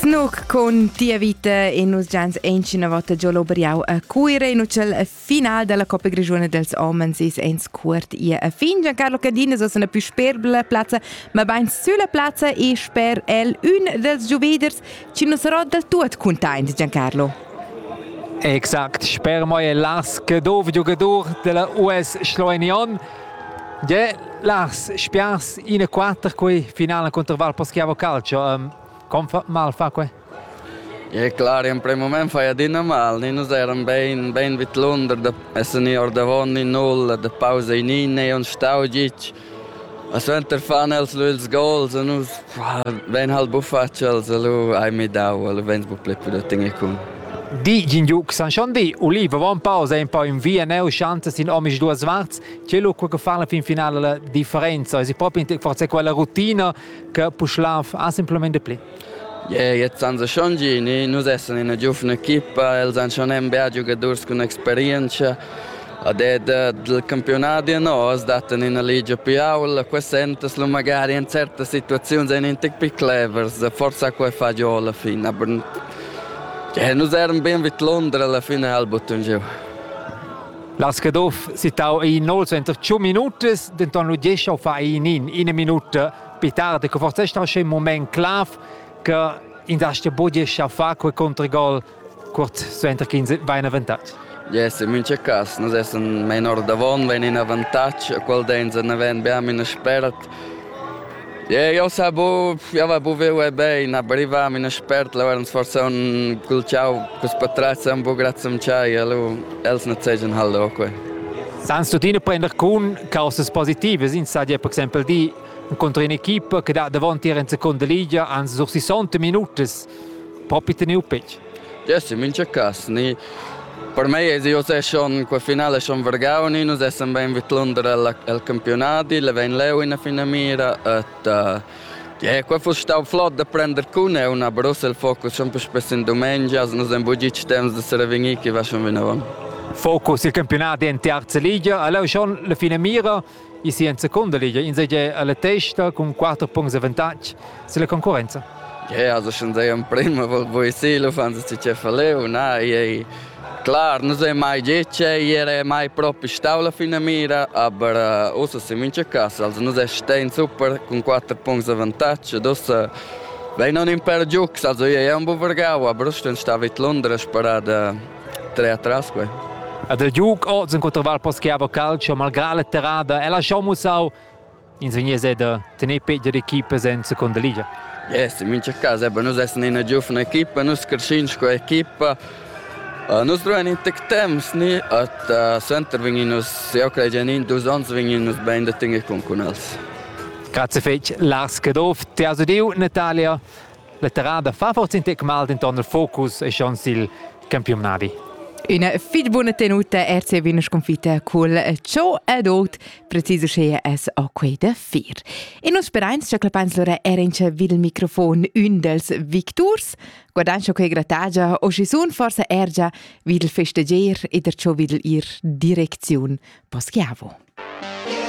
Snook con Tia vita e nus gians ancina volta giò l'Oberiau a Cuira in ucel final della Coppa Grigione dels Homens is ens cuort ia a fin. Giancarlo Cadin es una più sperbla plazza, ma bain sulla plazza e sper el un dels giuveders ci nus sarò del tuot containt, Giancarlo. Exakt, sper moi è l'as che dov giocadur della US Schloenion Gie, Lars, spiars ina quater quei finala contro Val Paschiavo Calcio. Um, com fa mal fa quei? E clar, in primo moment fai adina mal, noi nus eran ben, ben vid Lunder, da essen ni ordavon ni null, da pausa in in e on stau gic. A suenter fan els lu ils goals e nus Vein halt bufatg els, lu hai midau, lu vegns buc pli più da tener cun. Di Gingiuc San Schondy, Uliva va en pausa en poi in via neu schanza sin omis duas varts, c'è lu quel che fa la fin finale la differenza, si proprio in forse quella rutina che Puschlav ha simplemente pli. Yeah, jetzt san sie schon gini, nus essen in einer giufen Equipa, els han schon ein bär giugadors con experienza Ad è dal campiunadi nos dattan ina ligia più aula, qua sentas lu magari in certas situaziuns ein in tec più clevers, forsa quei fa giu alla fine, aber ja, nus eran bien vid Londra alla fine al buttun giu. La Schedoff sittau in 25 minutas, denton lu diescha fa in in, ina minuta più tardi, che forse è stato un moment clav che in da ste budiescha fa quei controgol Cuort suenter ch'ins va en avantatg? Yes, in mincha cas, nus essan main ordavon, vain in avantatg, a qual dain za naven beam ina spert. Yeah, eu sa bu, eu va bu viu e bein, aber i vam in spert, la varns forsa un cul ciau cus patrazan bu grazzam ciai, alu els ne zejan hal oque. Sans tuttina prender con causas positivas, ins sa dir per exempel di incontro in equipa che dat davon tier in seconda liga ans sur 60 minutas Popi teniu petg. Jesse mincha cas ni per mei es io se schon qua finale schon vargau ni nus essan bein vid l'under al, al campionadi, le vein leu ina finamira et uh, yeah, qua fuss stau flot da prender cun eu na Brussel il focus schon più spesso in dumengia, as nus en bugic temps da serevegnir chi va schon vinavon. Focus il campionat en terza ligia, aleu schon la finamira Il si en secunda liga insatgè alla testa cun quatter puncts avantatg silla concurrenza. Yeah, also schon sei am prima volta voi silo fan se ce faleu na ei clar non sei mai dice era mai proprio staula fina mira aber usa se mince casa also non sei stein super con quattro punti avantaggio dossa Vai non in per giux, also io è un buvergau, a Bruston stava in Londra sparada Tre atras quei. Ed il giug oz incontra Val Poschiavo Calcio malgrà la terrada e lasciau mussau in segnese da tener pegia equipa en seconda liga. Yes, in mincha cas, eben, nus essen ina giuvna equipa, nus crescin sco equipa, Uh, nus druein in tec temps ni at uh, suenter vegnin nus eu crei in in dus ons vegnin nus bein da tener con cun els. Grazie fetg Lars Caduff, te has udiu Natalia Letterada fa forse in tec mal denton il focus e schon sil campionadi. Üna fitg buna tenuta RC Wiener sconfitta cul ciò ed ot preciso sche es o quei da fir. E nus sperains che clapains lora era in cia vid il microfon un dels victurs, guardains quei gratagia o si sun forse ergia vid il festeger e der ciò vid ir direcziun Poschiavo.